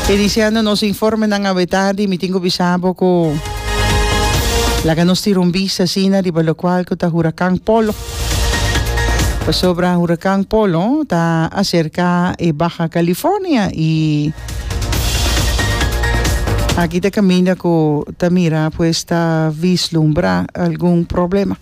Iniciando nos informenan awe tardi mi tin cu bisa bo cu laga nos tira un bista asina riba locual cu ta huracan Polo pasobra huracan Polo ta acerca e Baja California y aki ta caminda cu ta mira pues ta vislumbra algun problema.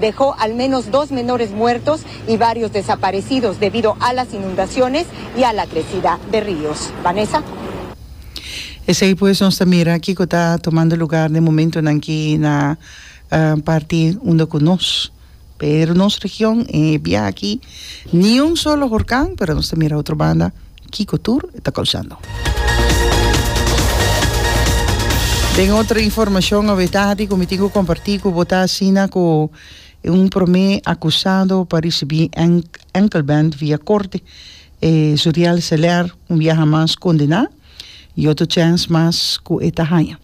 dejó al menos dos menores muertos y varios desaparecidos debido a las inundaciones y a la crecida de ríos. Vanessa. Esey pues nos ta mira kico ta tomando lugar den momentonan aki na parti unda cu nos, pero nos region e biaha aki, ni un solo hurcan, pero nos ta mira otro banda. Kiko tur e ta koushando. Den otro informashon awe tahadi ku mi tin ku komparti ku bo ta asina ku e un promé akusado pa risibí enkelband via korte e Zuriel Seler un biaha mas kondená i otro chèns mas ku e ta haña.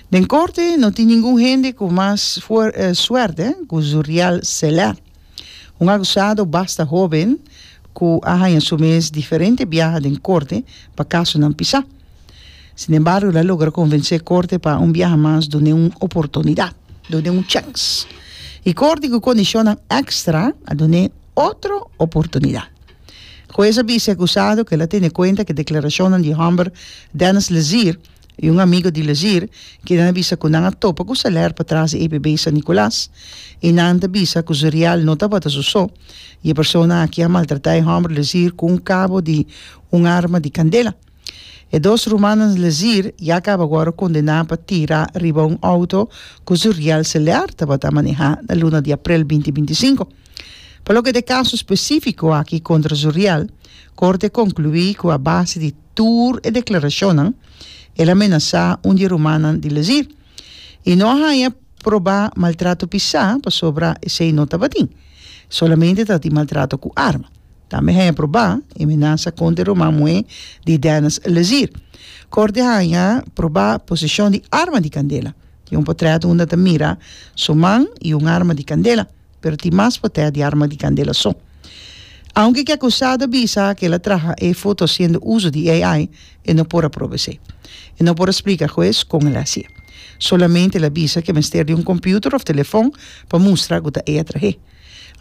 Den korte no tin ningun hende ku mas suerte ku Zuriel Seler. Un akusado basta hóben ku a haña su mes diferente biaha den korte pa kasonan pisá. Sinembargo, el a logra konvensé korte pa un biaha mas dun'é un oportunidat, dun'é un chèns. I korte ku kondishonnan èkstra a dun'é otro oportunidat. Hues a bisa e akusado ku el a tene kuenta ku e deklarashonnan di hòmber Dennis Lezier I un amigo di Lezir keda na bisa ku nan a topa ku Seler patras di EPB San Nicolas i nan ta bisa ku su rial no tabata su so i e persona aki a maltratá e hòmber Lezir ku un kabo di un arma di kandela. E dos rumannan Lezir ya kaba wòrdu kondená pa tira riba un outo ku su rial Seler tabata manehá na luna di aprel binti binti i sinku. Pa loke ta e kaso spesífiko aki kontra su rial, korte a konkluí ku a base di. tur e deklarashonnan, el a menasá un di e rumannan di Lezir, i no a haña probá maltrato pisá, pasobra esei no tabatin. Solamente tabatin maltrato ku arma. Tambe haña probá e menasa kontra e ruman muhé di Dennis Lezir. Korte haña probá poseshon di arma di kandela. Di un potrèt unda ta mira su man i un arma di kandela. Pero tin mas pa tèra di arma di kandela so. Aunke ki akusado a bisa ku el a traha e foto hasiendo uso di AI, e no por a proba esei. E no por a splika hues kon el a hasié. Solamente el a bisa ku e mester di un kòmpiuter òf telefòn pa mustra ku ta e a trah'é.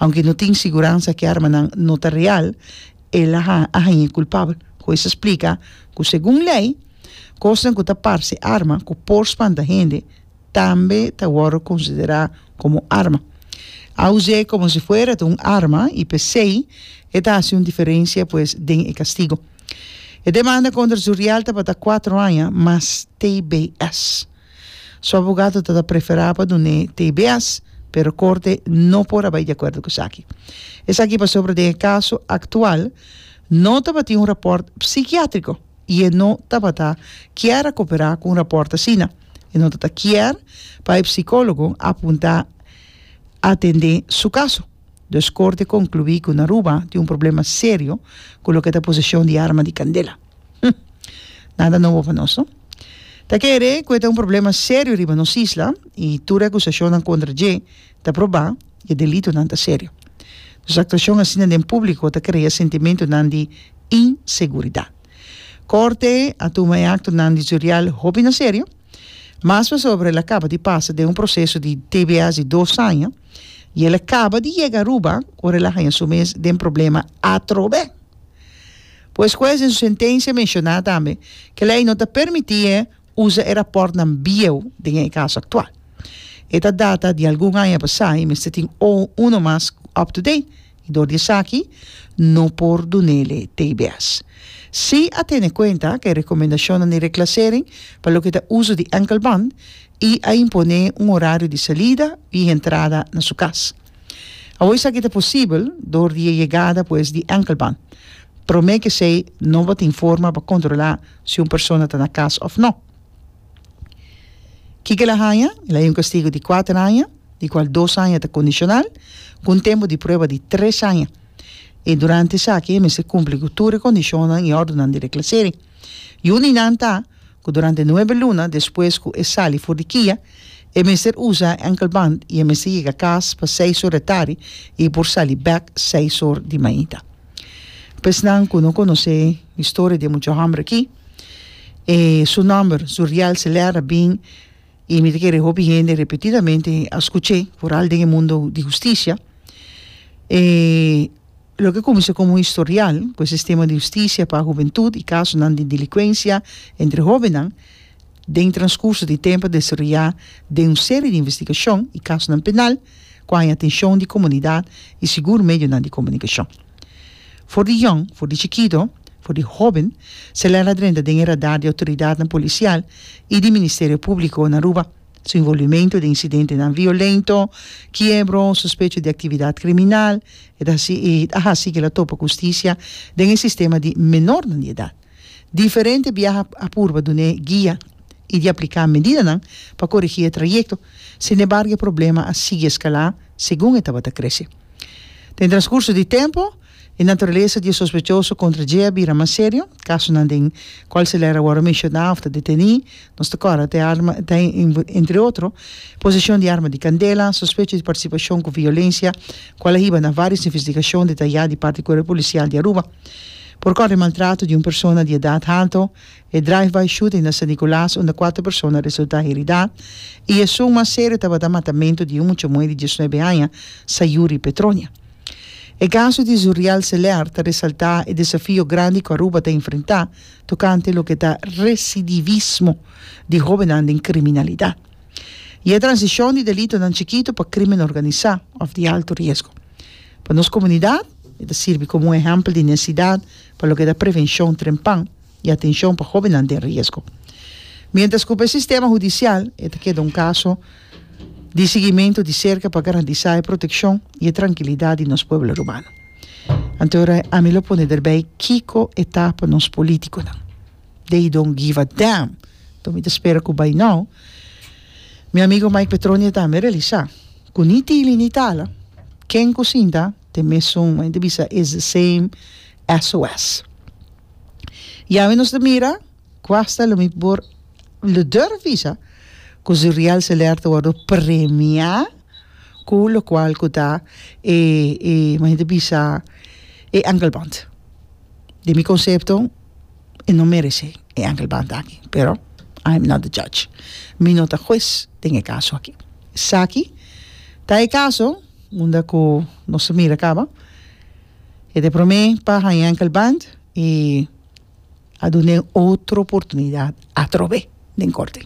Aunke no tin siguransa ku e armanan no ta real, el a hañ'é kulpabel. Hues a splika ku segun lei, kosnan ku ta parse arma ku por spanta hende, tambe ta wòrdu konsiderá komo arma. A us'é komo si fuera ta un arma i p'esei e ta hasi un diferensia pues den e kastigo. E demanda kontra Zuriel tabata kuatro aña mas tbs. Su abogado ta ta preferá pa dun'é tbs, pero Korte no por a bai di akuerdo ku esaki. Esaki pasobra den e kaso aktual no tabatin un rapòrt psikiátriko i e no tabata kier a koperá ku un rapòrt asina. e no ta ta kier pa e psicólogo a punta atendé su caso. Dus corte concluí cu Naruba tin un problema serio cu loke ta posesión di arma di candela. Hm. Nada nobo pa nos, no? Ta kere cu e ta un problema serio riba nos isla i tur e acusacionnan contra dje ta probá i e delitonan ta serio. Dus actuacion asina den público ta crea sentimentonan di inseguridad. Corte a tuma e actonan di Zuriel hopi na serio, mas pasobra el a caba di pasa den un proceso di tbs di dos aña y el a caba di yega Aruba ora el a haña su mes den problema atrobe. Pues huez den su sentencia a menciona tambe que ley no ta permiti e usa e raportnan bieu den e caso actual. E ta data di algun aña pasa y mester tin uno mas up to date. i dor di esaki no por dun'ele tbs. Sí a tene kuenta ku e rekomendashonnan di reklasering pa loke ta uso di enkelband i a imponé un orario di salida i entrada na su kas. Awo esaki ta posibel dor di e yegada pues di enkelband. Promé kesei no bo ta informa pa kontrolá si un persona ta na kas òf no. Kiko el a haña? El a haña un kastigo di kuater aña. di cual dos aña ta condicional, cu un tempo di prueba di tres aña, y durante esaki e mester cumpli cu tur e condicionnan y ordonan di reclasering. Yu di nan ta cu durante nuebe luna despues cu e sali for di kia, e mester usa e ankelband y e mester yega cas pa seis or e tardi y por sali bek seis or di mañita. Pa esnan cu no conoce historia di e mucha homber aki, e su nomber, su real celer, a bin, I mi ta kere hopi hende repetidamente a skuch'é, foral den e mundo di hustisia, e loke a kuminsá komo un historial ku e sistema di hustisia pa hubentut i kasonan di delikwensia entre hóbennan, den transkurso di tempu a desaroyá den un serie di investigashon i kasonan penal ku haña atenshon di komunidat i sigur medionan di komunikashon. For di yòn, for di chikitu, for di hóben, Celera drenta den e radar di outoridatnan polisial i di Ministerio Públiko na Aruba. Su involvimentu den insidentenan violento, kiebro, suspecho di aktividat kriminal, e ta hasi e ta hasi kila topa ku hustisia den e sistema di menornan di edat. Diferente biaha a purba dun'é guia i di apliká medidanan pa korigí e trayekto, sinembargo e problema a sigui eskalá segun e tabata krese. Den transkurso di tempu, e naturalesa di e sospechoso kontra dje a bira mas serio, kasonan den kual Celera wòrdu menshoná òf ta detení, nos ta kòrda ta e arma ta entre otro, poseshon di arma di kandela, sospecho di partisipashon ku violensia, kual a hiba na vários investigashon detayá di parti Kuerpo Pulisial di Aruba. Por kòrdi maltrato di un persona di edat haltu, e drive-by shooting na San Nicolas unda kuater persona resultá heridá i esun mas serio tabata matamentu di un muchamuhé di dies nuebe aña, Sayuri Petronia. E kaso di Zuriel Celer ta resaltá e desafio grandi ku Aruba ta enfrentá tokante loke ta residivismo di hóbennan den kriminalidat. i e transishon di delitonan chikitu pa krimen organisá òf di altu riesgo. Pa nos komunidat e ta sirbi komo un ehèmpel di nesidat pa loke ta prevenshon trempan i atenshon pa hóbennan den riesgo. Miéntras ku pa e sistema hudisial e ta keda un kaso di sigimentu di serka pa garantisá e protekshon i e trankilidat di nos pueblo Aruba. Anto e ora ami lo pone derbei kiko e ta pa nos polítikonan. they don't give a damn to mi ta spera cu bay now mi amigo Mike Petronia ta me realisa cu ni tili ni tala ken cu sinta te mesun men ta bisa is the same SOS y awe nos ta mira cu hasta lo mi por lo durf bisa cu si real seler ta wordo premia cu locual cu ta e e men ta bisa e angelband den mi concepto e no merece e angelband aki pero I am not the judge mi no ta hues den e caso aki esaki ta e caso unda cu nos ta mira caba e ta prome pa haña angelband y a dun'e otro oportunidad atrobe. den korte.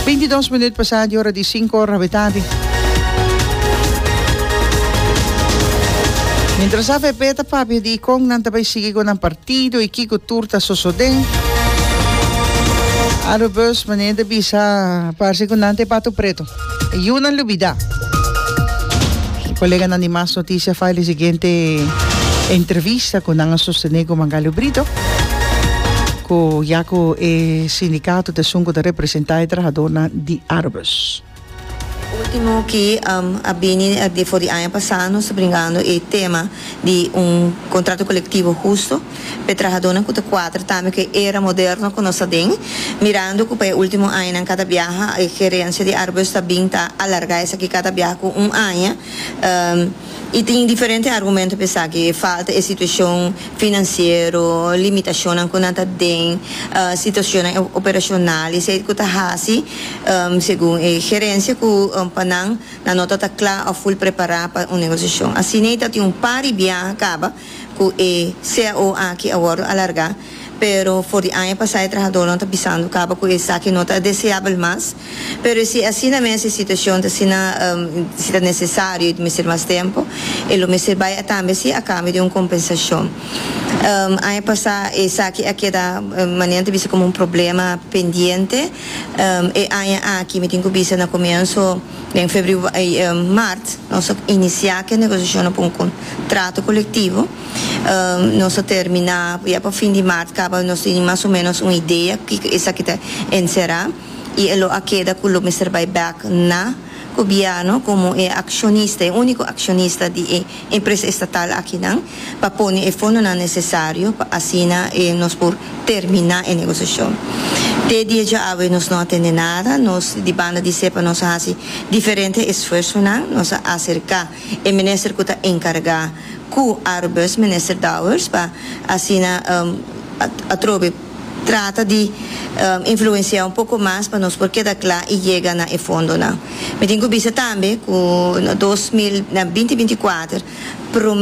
Binti dos minut pasá di ora di sinku ora hopi tardi. Mientras avp ta papia di kon nan ta bai sigui ku nan partido i kiko tur ta sosodé, Arobus manera di bisa parse ku nan ta e patu pretu. Yu nan lubida. Koleganan di Mas Noticia fai di siguiente entrevista cu nan a sostene cu Mangalio Brito, cu ya cu e sindicato ta esun cu ta representa e trahadornan di Arbus. Ultimo ki a bini for di aña pasa nos ta bringando e tema di un contrato colectivo husto. p'e trahadónan ku ta kuadra tambe ku e era moderno ku nos ta den, mirando ku pa e último añanan kada biaha e gerensia di Arbus ta bin ta alargá esaki kada biaha ku un aña i tin diferente argumento p'e esaki, falta e situashon finansiero, limitashonnan ku nan ta den, situashonnan operashonal i seid ku ta hasi segun e gerensia ku pa nan nan no ta ta kla òf ful prepará pa un negosiashon. Asin'ei ta tin un par di biaha kaba cu e cao aki a wordo alarga, pero for di aña pasa e trahadornan ta bisando caba cu esaki no ta deseabel mas. Pero si asina mes e situacion ta asina, si ta necesario y ta mester mas tempo, e lo mester bay atambe si a cambio di un compensacion. Aña pasa esaki a keda manera nan ta bisa como un problema pendiente, e aña aki mi tin cu bisa na comienso, Den mart nos a inisiá ku e negosiashonnan pa un kontrato kolektivo. Nos a terminá ya pa fin di mart kaba nos tin mas o ménos un idea kiko esaki ta enserá i e lo a keda ku lo mester bai bèk na Gobièrnu komo e akshonista, e úniko akshonista di e empresa estatal akinan. pa pone e fondonan nesesario pa asina nos por terminá e negosiashon. Te dia djaawe nos no a tende nada. Nos di banda di Sepa nos a hasi diferente esfuersonan. Nos a aserká e minister ku ta enkargá ku Aerobus, minister Dowers, pa asina atrobe trata di influensiá un poko mas pa nos por keda kla i yega na e fondonan. Mi tin ku bisa tambe ku na dos mil, na binti binti kuater,